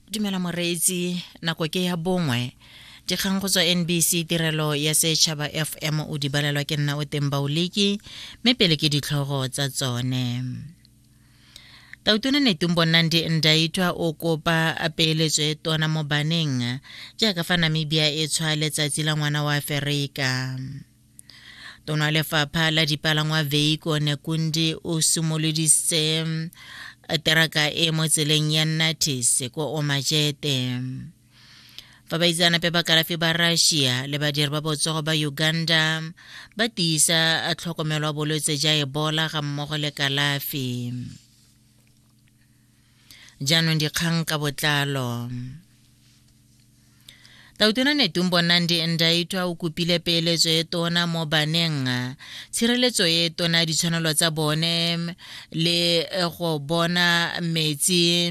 dumela moreetsi nako ke ya bongwe dikgang go tswa nbc tirelo ya setšhaba fm o di balelwa ke nna o teng baoleki mme pele ke ditlhogo tsa tsone tautona netumbo nandi ndaitwa o kopa peeletso e tona mo baneng jaaka fa namibia e tshwa letsatsi la ngwana wa aferika tona lefapha la dipalangwa veiko nekundi o simoloditse eh, teraka e mo tseleng ya natis ko omajete fa baitsanape ba kalafi ba russia le badiri ba botsogo ba uganda ba tiisa eh, tlhokomelo ya bolwetse ja ebola ga mmogo le kalafi jaanong dikgang ka botlalo Tautona Netumbo Nandi Ndaitwa o kopile peeletso e tona mo baneng tshireletso e tona ditshwanelo tsa bone le eh, go bona metsi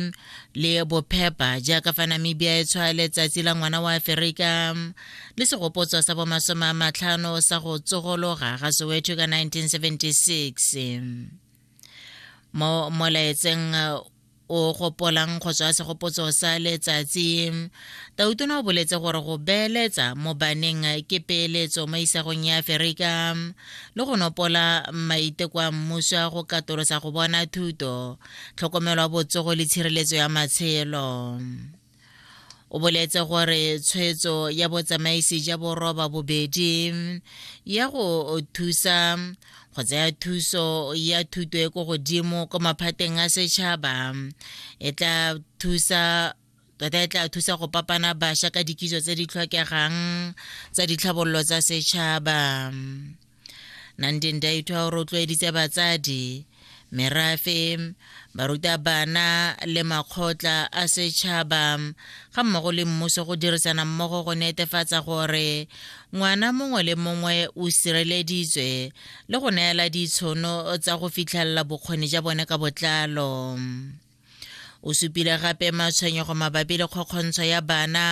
le bophepa jaaka fa namibia e tshwa letsatsi la ngwana wa aferika le segopotso sa bomasome a matlhano sa go tsogologa ga soweto ka 1976 mo molaetseng o gopolang go tswa segopotso sa letsatsi tautona o boletse gore go beeletsa mo baneng ke peeletso mo isagong ya aferika le go nopola maiteko a mmuso a go katolosa go bona thuto tlhokomelo ya botsogo le tshireletso ya matshelo o boletse gore tshwetso ya botsamaisi ja boroba bobedi ya go thusa go tsaya thuso ya thuto e ko godimo kwa maphateng a setšhaba e tla thusa tota e tla thusa go papana bašwa ka dikiso tse di tlhokegang tsa ditlhabololo tsa setšhaba 19 di ithwa o rotloeditse batsadi merafe barutabana le makgotla a setšhaba ga mmogo le mmuso go dirisana mmogo go netefatsa gore ngwana mongwe le mongwe o sireleditswe le go neela ditshono tsa go fitlhelela bokgoni ja bone ka botlalo o supile gape matshwenyego mabapi le kgokgontsho ya bana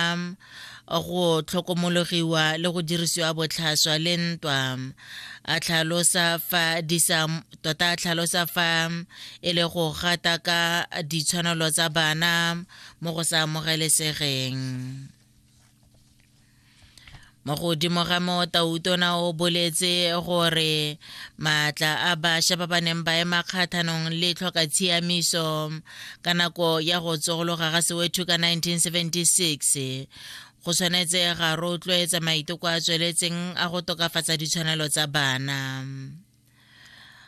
go tlhokomologiwa le go dirisiwa botlhaswa le ntwa a tlhalosa fa di sa tota a tlhalosa fa e le go gata ka ditshwanelo tsa bana mo go sa amogelesegeng mo godimo ga moo tautona o boletse gore maatla a bašwa ba ba neng ba ema kgathanong le tlhoka tshiamiso ka nako ya go tsogologa ga sewethu ka 1976 go tshwanetse ga rotloetsa maiteko a tsweletseng a go tokafatsa ditshwanelo tsa bana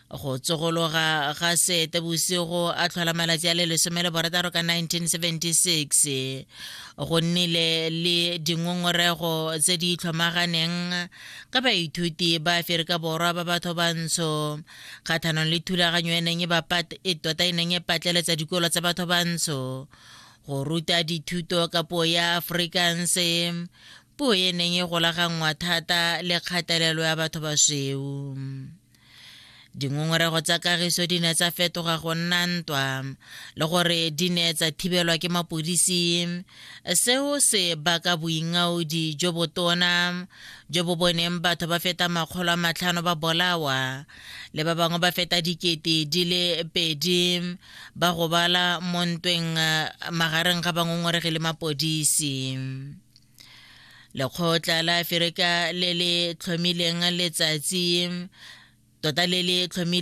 go tsogologa ga sete bosigo a tlhola malatsi a le lesome le borataro ka 1976 go nnile le dingongorego tse di itlhomaganeng ka baithuti ba aferika borwa ba batho bantsho kgathanong le thulaganyo e neng e, e tota e neng e patleletsa dikolo tsa batho bantsho go ruta dithuto ka puo ya afrikanse Puo e neng e golaganngwa thata le kgatelelo ya batho ba sweu. Dingongorego tsa kagiso di ne tsa fetoga go nna ntwa le gore di ne tsa thibelwa ke mapodisi. Seo se baka boingaodi jo botona jo bo boneng batho ba feta makgolo a matlhano ba bolawa le ba bangwe ba feta dikete di le pedi ba gobala mo ntweng magareng ga bangongoregi le mapodisi. lekgotla la aferika le le tlhomileng letsatsi tota le le tlhomileng